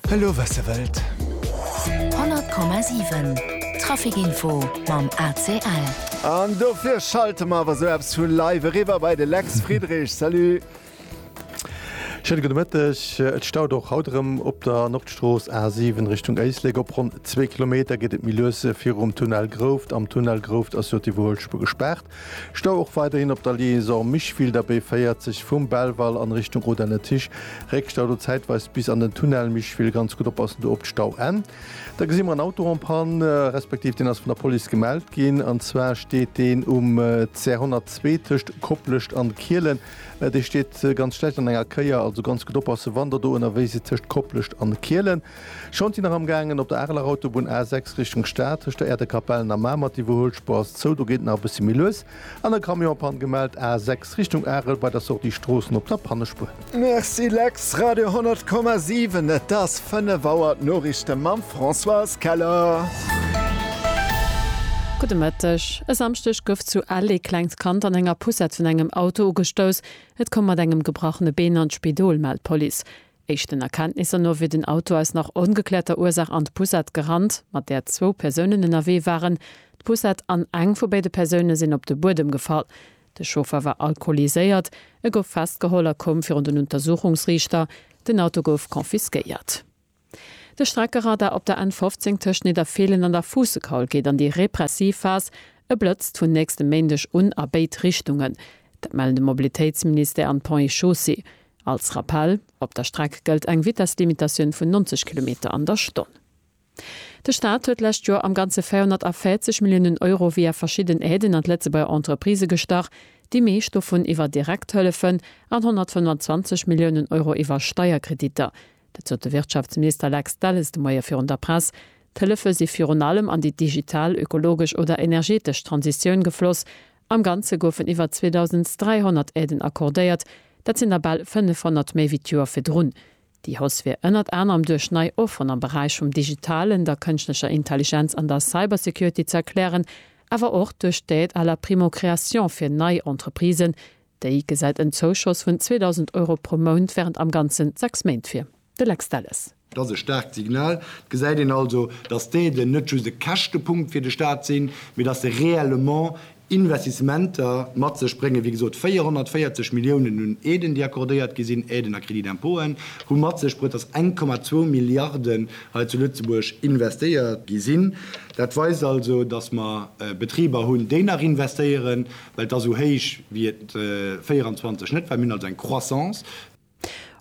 Elo wat se wëllt. 100,7 Traficinfo mam ACL. An dofir schalte mer awer sou eppes vu live eriwwer bei de Lex Friedrich. Salut. Schéine gudde Mëtteg. Et staut och haut erëm op der Nordstrooss A7 Richtung Éislek. Op ronn zwee Kilometer geet et méi lues virum Tunnel Grouft. Am Tunnel Grouft ass jo d'Iwwerhuelspuer gespaart. Stau och weiderhin op der Liaison Mischwilder, B40, vum Belval an Richtung Rodange-Tisch. Réckstau do zäitweis bis an den Tunnel Mischwil. Ganz gutt oppassen do op d'Stauenn. Da gesi mer en Auto en panne, respektiv deen ass vun der Police gemellt ginn. An zwar steet deen um CR 102 tëscht Koplescht an Kielen. Dee steet ganz schlecht an enger Kéier. Also ganz gutt oppassen, wann der do ënnerwee sidd tëscht Koplescht an Kielen. Schonn si nach am gaangen op der Areler Autobunn A6 Richtung Stad, tëscht der Aire de Capellen a Mamer. D'Iwwerhuelspuer ass zou, do geet et nach e bëssi méi lues an e Camion Panne gemellt A6 Richtung Arel bei der Sortie Stroossen op der Pannespuer. Merci Lex, Radio 100,7, et ass 5 Auer, d'Noriichte mam Françoise Keller. Gudde Mëtteg. E Samschdeg gouf zu Ell ee klengt Kand an enger Poussette vun engem Auto ugestouss. Et koum mat engem gebrachene Been an d'Spidol, mellt d'Police. Éischten Erkenntnisser no wier den Auto aus nach ongeklärter Ursaach an d'Poussette gerannt, mat där zwou Persounen ënnerwee waren. D'Poussette an eng vu béide Persoune sinn op de Buedem gefall. De Chauffer war alkoholiséiert. E gouf festgeholl a koum virun den Untersuchungsriichter. Den Auto gouf confisquéiert. De Streckeradar op der N 15 tëscht Nidderfeelen an der Fuussekaul geet an déi repressiv Phas. E blëtzt vun nächstem Méindeg un a béid Richtungen. Dat mellen de Mobilitéitsministère an d'Ponts et Chaussées. Als Rappell, Op der Streck gëllt eng Vitesslimitatioun vun 90 Kilometer an der Stonn. De Staat huet d'lescht Joer am Ganze 440 Milliounen Euro via verschidden Aiden an d'Lëtzebuerger Entreprisë gestach, déi meescht dovun iwwer direkt Hëllefen an 125 Milliounen Euro iwwer Steierkreditter. Dat sot de Wirtschaftsminister Lex Delles de Moie virun der Press. D'Hëllefe si virun allem an déi digital, ökologesch oder energetesch Transitioun gefloss, Am Ganze goufen iwwer 2.300 Aiden accordéiert, dat sinn der bal 500 méi wéi d'Joer virdrun. Déi Hausse wier ënnert anerem duerch nei Offeren am Beräich vum Digitalen, der Kënschtlecher Intelligenz an der Cybersecurity ze erklären, awer och duerch d'Aide à la primo-création fir nei Entreprisen. Déi gesäit en Zouschoss vun 2.000 Euro pro Mount wärend am Ganzen sechs Méint vir. De Lex Delles. Dat ass e staarkt Signal. Et gesäit een also, datt d'Aiden net just e Käschtepunkt fir de Staat sinn, mee datt se reellement Investissementer mat sech bréngen. Wéi gesot, 440 Milliounen un Aiden, déi accordéiert gi sinn, Aiden a Crédit d'impôten, hu mat sech bruet, datt 1,2 Milliarden hei zu Lëtzebuerg investéiert gi sinn. Dat weist also, datt mer Betriber hunn, déi nach investéieren, well et ass esou héich wéi et 24 net war. Mir hunn also eng Croissance.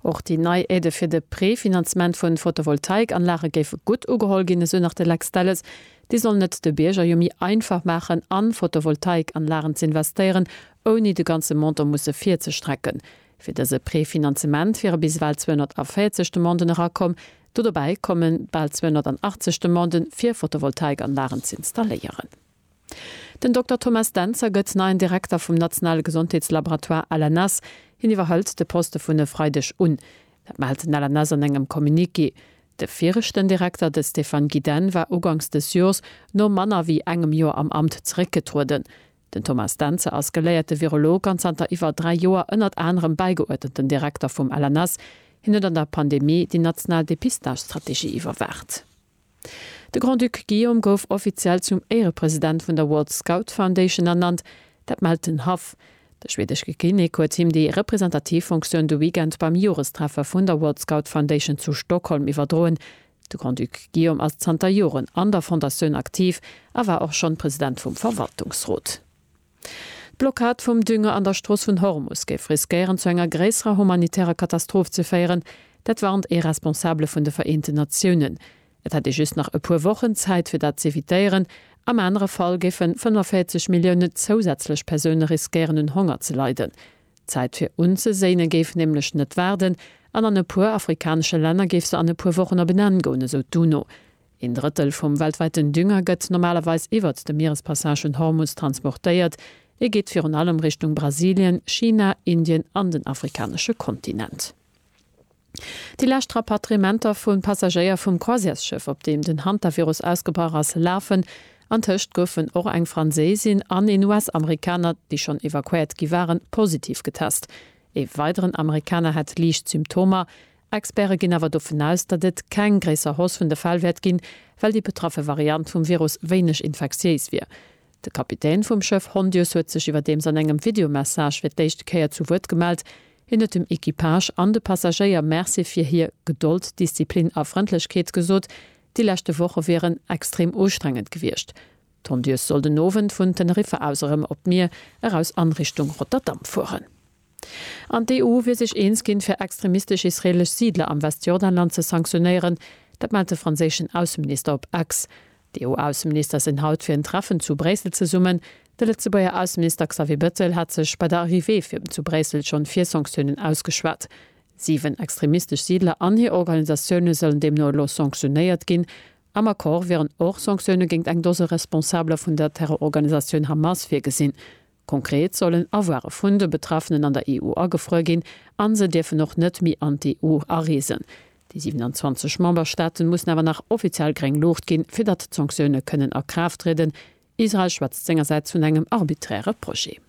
Och déi nei Aide fir de Prefinanzement vun Photovoltaikanlage géif gutt ugeholl ginn, esou nach de Lex Delles. Déi sollen et de Bierger jo méi einfach maachen an Photovoltaikanlagen ze investéieren, ouni de ganze Montant musse virzestrecken. Fir dëse Prefinanzement wiere bis ewell 240 Demanden erakomm. Do dobäi kommen bal 280 Demanden fir Photovoltaikanlagen ze installéieren. Den Dokter Thomas Dentzer gëtt neien Direkter vum nationale Gesondheetslaboratoire LNS. Hien iwwerhëlt de Poste vun e Freideg un. Dat mellt den LNS an engem Communiqué. De viregten Direkter, de Stéphane Guidenne, war ugangs dës Jors no manner wéi engem Joer am Amt zeréckgetrueden. Den Thomas Dentzer ass geléierte Virolog an zanter iwwer dräi Joer ënnert anerem bäigeuerdneten Direkter vum LNS. Hien huet an der Pandemie déi national Depistagestrategie iwwerwaacht. De Grand-Duc Guillaume gouf offiziell zum Éierepresident vun der World Scout Foundation ernannt, dat mellt den Haff. De schwedeschke Kinnek huet him déi representativ Funktioun de Weekend beim Jorestreffe vun der World Scout Foundation zu Stockholm iwwerdroen. De Grand-Duc Guillaume ass zanter Joren an der Fondatioun aktiv a war och schonn President vum Verwaltungsrot. D'Blockad vum Dünger an der Strooss vun Hormus géif riskéieren zu enger gréisserer humanitärer Katastroph ze féieren, dat warnt ee Responsabele vun de Vereenten Natiounen. Et hätt ee just nach e puer Wochen Zäit fir dat z'evitéieren, am anere Fall géifen 45 Millioune zousätzlech Persoune riskéieren un Honger ze leiden. D'Zäit fir unzeséine géif nämlech net waarden an an e puer afrikanesche Länner géif se an e puer Wochen op en Enn goen, esou d'UNO. Een Drëttel vum weltwäiten Dünger gëtt normalerweis iwwert de Mierespassage vun Hormus transportéiert. E geet virun allem Richtung Brasilien, China, Indien an den afrikanesche Kontinent. Déi lescht Rapatriementer vu Passagéier vum Croisièresschëff, op deem den Hantavirus ausgebrach ass, lafen. Antëscht goufen och eng Franséisin an een US-Amerikaner, déi schonn evakuéiert gi waren, positiv getest. Ee weideren Amerikaner hat liicht Symptomer, Experte ginn awer dovun aus, datt et keng gréisser Hausse vun de Fäll wäert ginn, well déi betraffe Variant vum Virus wéineg infektiéis wier. De Kapitän vum Schëff Hondius huet sech iwwerdeems an engem Videomessage fir d'éischt Kéier zu Wuert gemellt. Hien huet dem Equipage an de Passagéier Merci fir hir Gedold, Disziplin a Frëndlechkeet gesot. Déi leschte Woche wieren extrem ustrengend gewiescht. D'Hondius soll den Owend vun Teneriffa aus erëm op d'Mier eraus an Richtung Rotterdam fueren. An d'EU wier sech eens ginn, fir extremistesch israeelesch Siidler am Westjordanland ze sanktionéieren. Dat mellt de franséischen Ausseminister op Ex. D'EU-Ausseminister sinn haut fir en Treffen zu Bréissel zesummen. De Lëtzebuerger Ausseminister Xavier Bettel hat sech bei der Arrivée vum zu Bréissel schonn fir Sanktiounen ausgeschwat. Siwen extremistesch Siidler an hir Organisatioune sollen deemno elo sanktionéiert ginn. Am Accord wieren och Sanktioune géint eng Dose Responsabler vun der Terrororganisatioun Hamas virgesinn. Konkret sollen Avoire vun de Betraffenen an der EU agefruer ginn a se dierfen och net méi an d'EU areesen. Déi 27 Memberstaaten mussen awer nach offiziell gréng Luucht ginn, fir datt d'Sanktioune kënnen a Kraaft trieden. Israel schwätzt sengersäits vun engem arbiträre Projet.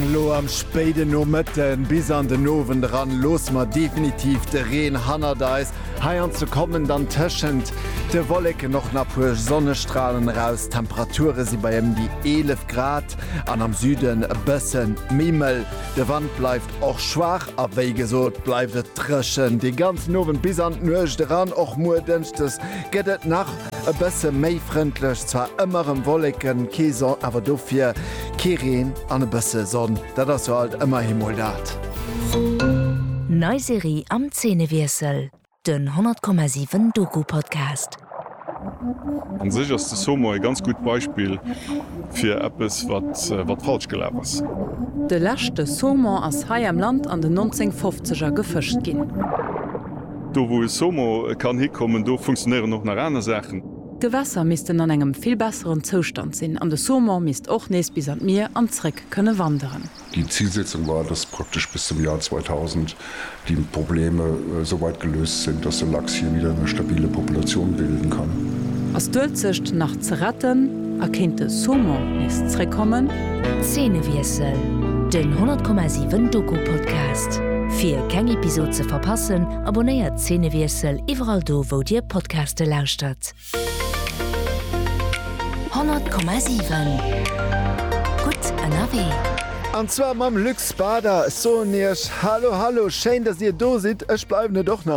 Elo am spéiden Nomëtten bis an den Owend eran loosse mer definitiv de Reen hannert eis. Heianzu kommen dann tëschent de Wolleken och nach puer Sonnestralen eraus. D'Temperature si bei ëm déi 11 Grad an am Süden e bësse méi mëll. De Wand bleift och schwaach a wéi gesot bleift et drëchen de ganzen Owend bis an d'Nuecht eran. Och muer Dënschdes gëtt et nach E bësse méi frëndlech, zwar ëmmer rem Wolleken, kee Son, awer dofir kee Reen an e bësse Sonn, dat ass jo alt ëmmerhi mol dat. Nei Serie am Zeenewiessel, den 100,7 Doku-Podcast. An sech ass de Somo e ganz gutt Beispill fir eppes wat falsch gelaf ass. De leschte Saumon ass hei am Land an den 1950er gefëscht ginn. Do wou e SOMO kann hikommen, do funktionéieren och nach aner Saachen. D'Gewässer missten an engem vill besseren Zoustand sinn an de SOMO misst och nees bis an d'Mier an zréck kënne wanderen. Déi Zilsetzung war, dass praktesch bis zum Joer 2000 déi Probleme sou weit geléust sinn, dass de Lachs hie widder eng stabile Populatioun bilden kann. Ass d'Uelzecht nach ze retten? A kéint de Saumon nees zréckkommen? Zeenewiessel, den 10,7 Doku-Podcast. Fir keng Episod ze verpassen, abonnéiert Zeenewiessel iwwerall do wou dir Podcaste lauschtert. 10,7 Gutt ënnerwee. An zwar mam Luc Spader. Soen iech Hallo, Hallo, schéin dass dir do sidd. Ech bleiwen et och nach.